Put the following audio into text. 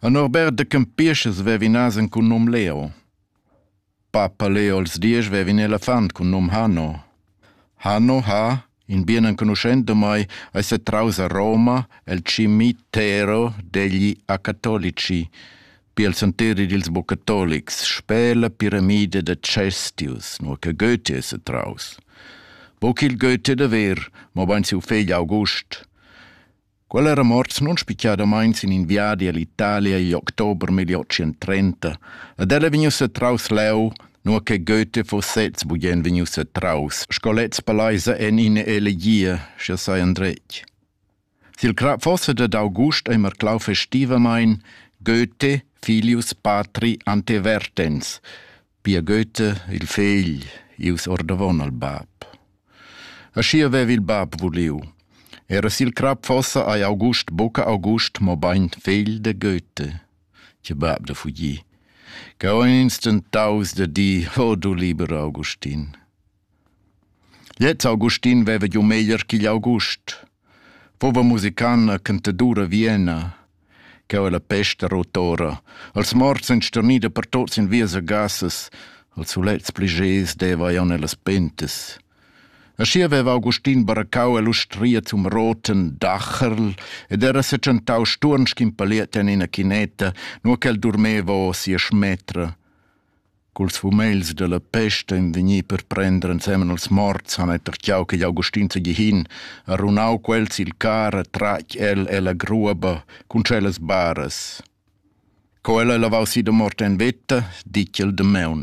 A Norbert da Campischas vev'inas en cun num Leo. Papa Leo als diesch vevin elefant cun num Hanno. Hanno ha, in bien enconuschent da mai, ei setraus a Roma el cimitero degli acatolici, pil senteri dils bucatolics, sper la piramide da Cestius, nur che Goethe setraus. Buc il Goethe da ver, mobein siu fegl August. Quella era morts non spicciadamain sin in viadi all'Italia igl october 1830, ed ella è vegnussa setraus leu, nua che Goethe fuss sez bugen vegnius setraus, sco lez paleisa en ina elegia, sche sai endretg. Sil crap fossa dad august ei marclau festivamain Goethe filius patri ante vertens, Pia Goethe, il fegl, ius ordavon al bab. Aschia vev il bab vuliu. Era sil crap fossa ei August buca August, mobein fegl de Goethe, che bab da fugir. Che ho instant daus da di, o du liber Augustin. Gliez Augustin veva giu meglier ch'igl August. Fuva musicanna e cantadura Viena, cheu ella pesta rotora, els morts ein sternida per tots in vias e gassas, els sulets pli gez deva ei on ellas pentas. Aschia veva Augustin baracau e l'ustria zum roten Dacherl ed era secantau sturn sch'in paliet en ina chineta, nur ch'el durmeva o sia schmetra. Culs fumegls dalla pesta ein vegni per prender ensemen als morts han ei tertgau ch'igl Augustin seigi hin, ha runau quels sil car e tratg el ella gruoba cun tschellas baras. Co el ei lavau si da mort en veta, ditg el damaun.